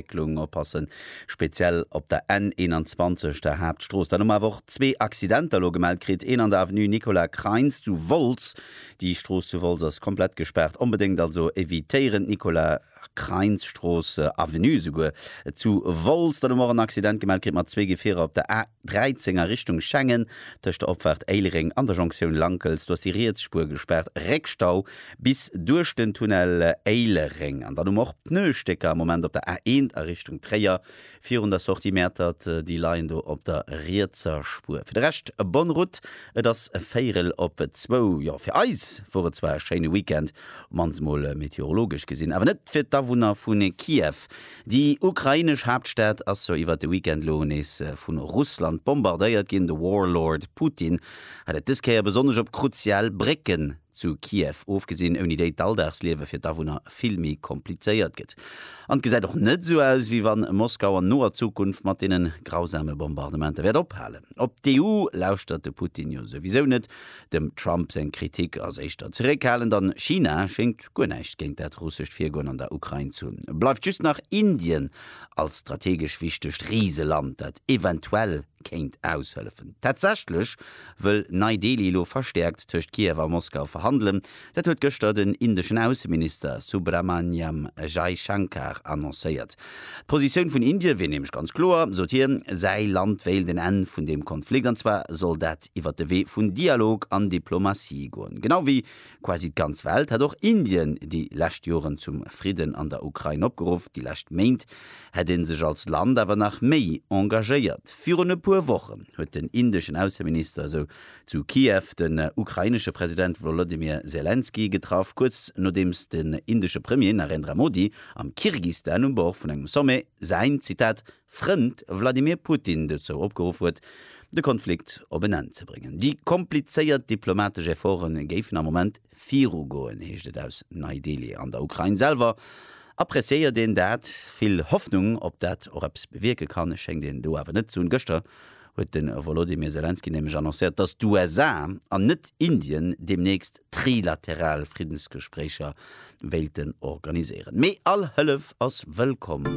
Entwécklung oppassen, speziell op der N21, der Haaptstrooss. Dann hu mer awer och zwee Accidenter elo gemellt kritt, een an der Avenue Nicolas Kreins zu Wolz. Déi Strooss zu Wolz ass komplett gespaart. Onbedéngt also evitéieren d'Nicolas Kreins Strooss, Avenue esouguer, zu Wolz. Dann hu mer och en Accident gemellt kritt mat zwee Gefierer op der A. 13 a Richtung Schengen, tëscht der Opfaart Éilereng an der Jonktioun Lankels, do ass déi riets Spuer gespaart, Réckstau bis duerch den Tunnel Éilereng. An dann hu mer och Pneustécker am Moment op der A1 a Richtung Tréier, virun der Sortie Mäertert, déi leien do op der rietser Spuer. Fir de Rescht bonne route, et ass véierel op zwou. Jo, fir eis wor et zwar e schéine Weekend, op d'mannst mol meteorologesch gesinn, awer net fir d'Awunner vu Kiew. Déi ukrainesch Haaptstad ass jo iwwert de Weekend lo nees vu Russland bombardéiert ginn. De Warlord Putin hat et dës Kéier besonnesch op kruzial Brécken zu Kiew ofgesinn, ouni déi d'Alldagsliewe fir d'Awunner vill méi komplizéiert gëtt. An et gesäit och net esou aus, wéi wann Moskau an noer Zukunft mat deene grausame Bombardementer wäert ophalen. Op d'EU lauschtert de Putin jo souwisou net, Dem Trump seng Kritik ass éischter zeréckhalend an China schéngt guer näischt géint dat russescht Virgoen an der Ukrain ze hunn. Bleift just nach Indien als strategesch wichtegt Riseland, dat eventuell kéint aushëllefen. Tatsächlech wëll Nei-Delhi elo verstäerkt tëscht Kiew a Moskau verhandelen, Dat huet gëschter den indeschen Ausseminister Subrahmanyam Jaishankar annoncéiert. D'Positioun vun Indie wier nämlech ganz kloer, sot hien, Säi Land wéilt en Enn vun deem Konflikt, an zwar soll dat iwwert de Wee vun Dialog an Diplomatie goen. Genau wéi quasi d'ganz Welt hätt och Indien déi lescht Joren zum Fridden an der Ukrain opgeruff. Déi lescht Méint hätt ee sech als Land awer nach méi engagéiert. Virun e puer Wochen huet den indeschen Ausseminister esou zu Kiew den ukrainesche President Wolodymyr Selenskyj getraff, kuerz nodeems den indesche Premier Narendra Modi am Kirgistan um Bord vun engem Sommet säin, Zitat, Frënd Wladimir Putin dozou opgeruff huet, de Konflikt op en Enn ze bréngen. Déi komplizéiert diplomatesch Efforte géifen am Moment Virugoen, heescht et aus Nei-Delhi. An der Ukrain selwer appreciéiert een dat. Vill Hoffnung, ob dat och eppes bewierke kann, schéngt een do awer net ze hunn. Gëschter huet de Wolodymyr Selenskyj nämlech annoncéiert, datt d'USA an net Indien deemnächst trilateral Friddensgespréicher wéilten organiséieren. Mee all Hëllef ass wëllkomm.